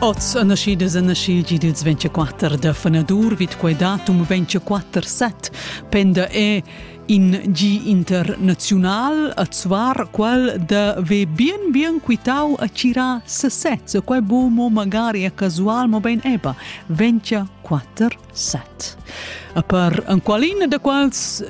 Oz a naschidas a naschil gi dils 24 da fanadur vid quei datum 24 set penda è in gi internazional a zuar qual da ve bien bien quitau a cira sesez e quel bo mo magari a casual mo ben eba 24 set. A per an qualina da quals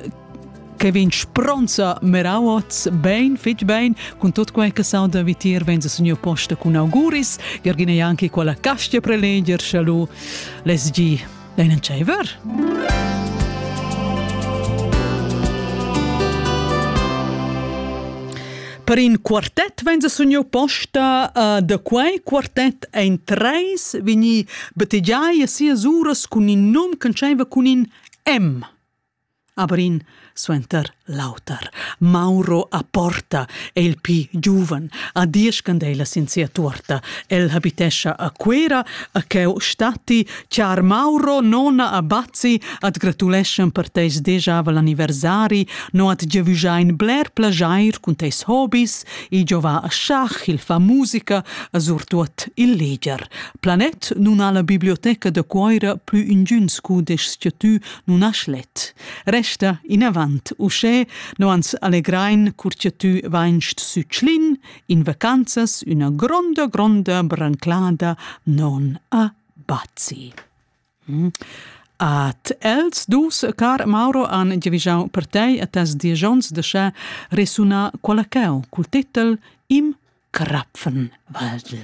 che vegn spronza meraots bein fitg bein cun tot quei che sauda vitier venza signor posta cun auguris Gergina Janki quella castia preleger chalu les gi ein tscheiver Per in quartet venza signor posta uh, da quei quartet ein treis vegni bettegiai a sias uras cun in num che tscheiva cun in M. a Brin suenter l'auter. Mauro a Porta è il pli giuven, a diesch candelas sin sia tuorta. El habitescha a Cuera, a cheu statti, char Mauro, nona a Bazzi, at gratuleschan per teis dejavel anniversari, no at giavüschain bler plajair cun teis hobis, i giova a Schach, il fa musica, a surtuot il leger. Planet nun ha la biblioteca da Cuoira plü ingüns cudeschs che tü nun ha schlet. Resta inavant uschè, no ans allegrain cur cha tü vainst sü Tschlin in vacanzas üna gronda, gronda branclada non a Bazzi. Mm. At els dus, car Mauro, han giavischau per tei a tas digions de sche resuna quella cheu cul titel Im Krapfenwaldl.